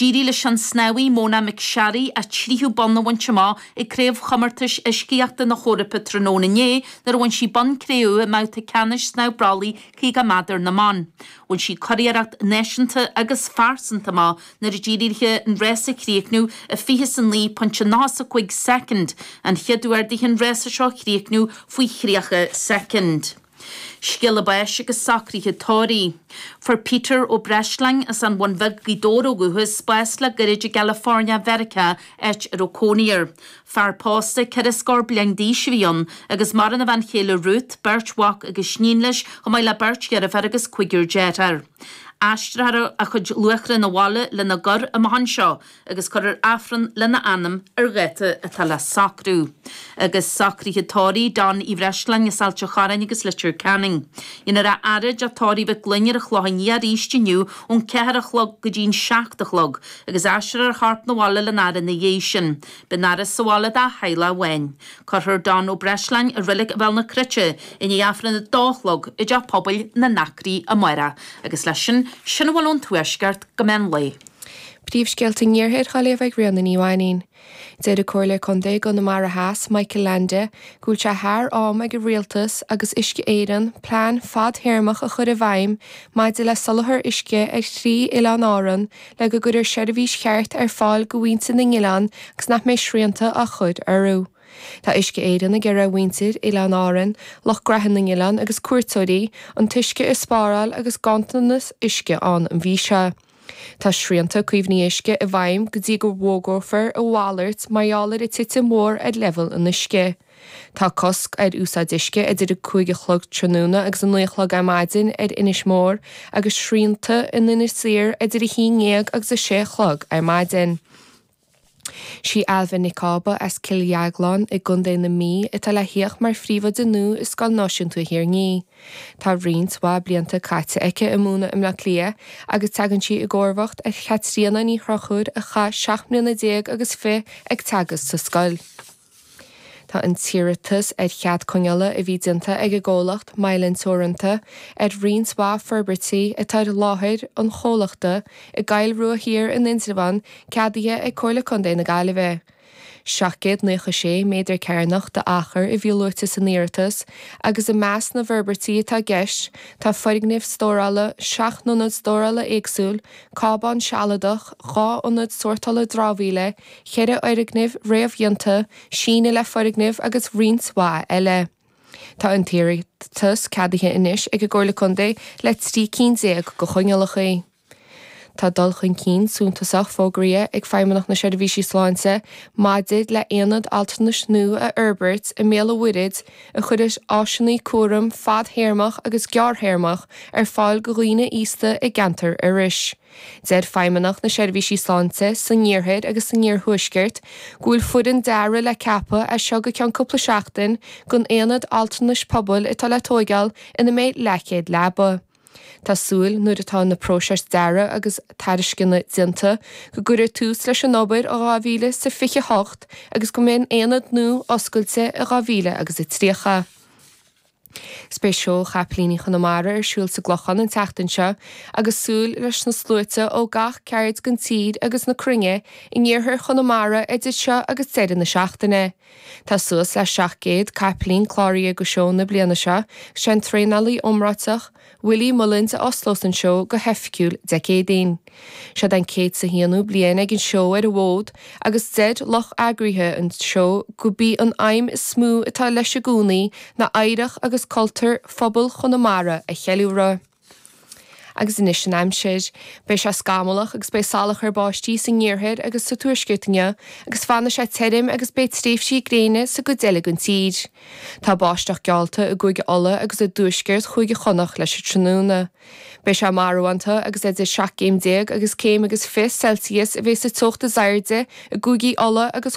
D'éirigh leis an snámhaí Mona McSharry a tríú bonn a bhaint amach ag Craobhchomórtais Uiscíochta na hEorpa tráthnóna inné nuair a bhain sí bonn cré-umha i mbabhta ceannais snámh brollaigh 50 méadar na mban. Bhain sí curiarracht náisiúnta agus phearsanta amach nuair a d'éirigh léi an rás a chríochnú i 20 is a 9 pointe 90 is a 5 soicind, an chéad uair di an rás seo a chríochnú faoi thríocha soicind. Scéala báis agus socruithe tórraimh. Fuair Peter Ó Breisleáin as an Bhun Bheag, Gaoth Dobhair ó dhúchas, bás le gairid i gCalifornia Mheiriceá, áit a raibh cónaí air. Fear pósta, ceithre scór bliain d'aois a bhí ann, agus maireann a bhean chéile Ruth, beirt mhac agus iníon leis, chomh maith le beirt dheirféar agus cúigear deartháir. Aistreofar a chuid luatha 'na bhaile lena gcur amach anseo, agus cuirfear Aifreann lena anam ar dháta atá le socrú. Agus socruithe tórraimh John Uí Bhreisleáin as Ailt an Chorráin agus Leitir Ceanainn. Déanfar a fhaire i dTeach Tórraimh Mhic Gloinn ar an Chlochán Liath arís inniu ón ceathair a chlog go dtí'n seacht a chlog, agus aistreofar a chorp 'na bhaile lena fhaire ina dhiaidh sin. Beidh an fhaire sa bhaile dá theaghlach amháin. Cuirfear John Ó Breisleáin i Reilig Bhéal na Cruite i ndiaidh Aifreann a dó a chlog i dTeach Pobail na nAcraí amárach. Agus leis sin, sin a bhfuil ón Tuaisceart go meán lae. Príomhscéalta an Iarthair dhá léamh ag Ríona Ní Mhainín. Deir an Comhairleoir Contae i gConamara Theas, Michael Leainde, go bhfuil sé thar am ag an Rialtas agus Uisce Éireann plean fadthéarmach a chur i bhfeidhm maidir le soláthar uisce ar thrí Oileán Árann le go gcuirfear seirbhís cheart ar fáil do mhuintir na n-oileán agus nach mbeidh srianta á chur orthu. Tá Uisce Éireann ag iarraidh ar mhuintir Oileáin Árann, lucht gnaithe na n-oileán agus cuairteoirí, an t-uisce a spáráil agus ganntanas uisce ann an mhí seo. Tá srianta caomhnaithe uisce i bhfeidhm go dtí go bhfógrófar a mhalairt mar gheall ar an titim mhór ar leibhéal an uisce. Tá cosc ar úsáid uisce idir 5 a chlog tráthnóna agus 9 a chlog ar maidin ar Inis Mór agus srianta in Inis Oírr idir 11 agus 6 a chlog ar maidin. Sí Ailbhe Nic Cába as Cill Dheagláin i gContae na Mí atá le thíocht mar phríomhoide nua i Scoil Náisiúnta Thír an Fhia. Tá roinnt mhaith blianta caite aici ag múineadh i mBleá Cliath agus tagann sí i gcomharbhacht ar Chaitríona Ní Chonchúir a chaith seacht mbliana déag agus fiche ag teagasc sa scoil. Tá an t-iarratas ar chead coinneála a bhí déanta ag an gcomhlacht Mylan Teoranta ar roinnt mhaith forbairtí atá ar láthair an chomhlachta i gCoill Rua Thiar in Indreabhán ceadaithe ag Comhairle Contae na Gaillimhe. 796 méadar cearnach d'achar a bhí luaite san iarratas agus i measc na bhforbairtí atá i gceist tá foirgnimh stórála, seacht n-ionad stórála éagsúil, cábán sealadach, dhá ionad sórtála dramhaíola, cheithre fhoirgneamh réamhdhéanta, síneadh le foirgneamh agus roinnt mhaith eile. Tá an t-iarratas ceadaithe anois ag an gComhairle Contae le trí cinn déag de choinníollacha. Tá dul chun cinn suntasach fógraithe ag Feidhmeannacht na Seirbhísí Sláinte maidir le haonad altranais nua a fhorbairt i mBéal an Mhuirthead a chuirfidh áiseanna cúraim fadthéarmach agus gearrthéarmach ar fáil go dhaoine aosta i gceantar Iorrais. Deir Feidhmeannacht na Seirbhísí Sláinte san iarthar agus san iarthuaisceart go bhfuil foireann dearaidh le ceapadh as seo go ceann cúpla seachtain don aonad altranais pobail atá le tóigeáil ina mbeidh leathchéad leaba. Tá súil nuair atá na próisis dearaidh agus tairisceana déanta go gcuirfear tús leis an obair i 2028 agus go mbeidh an t-aonad nua oscailte i 2030. Beidh Seó Chapaillíní Chonamara ar siúl sa gClochán an tseachtain seo agus súil leis na sluaite ó gach ceaird den tír agus na cruinne in iarthar Chonamara idir seo agus deireadh na seachtaine. Tá suas le 700 capaillín cláraithe do sheó na bliana seo agus sé an traenálaí iomráiteach, Willie Mullins a osclós an seó go hoifigiúil Dé Céadaoin. Seod é an céad is a haonú bliain ag an seó ar an bhfód agus deir lucht eagraithe an seó gurb í an aidhm is mó atá leis i gcónaí ná oidhreacht agus cultúr phobal Chonamara a cheiliúradh. Agus anois an aimsir. Beidh sé scamallach agus beidh salachar báistí san iarthar agus sa tuaisceart inniu agus fanfaidh sé tirim agus beidh tréimhsí gréine sa gcuid eile den tír. Tá báisteach geallta i gCúige Uladh agus i dtuaisceart Chúige Chonnacht leis an tráthnóna. Beidh sé marbhánta agus idir seacht gcéim déag agus céim agus fiche celsius a bheidh sa teocht is airde i gCúigí Uladh agus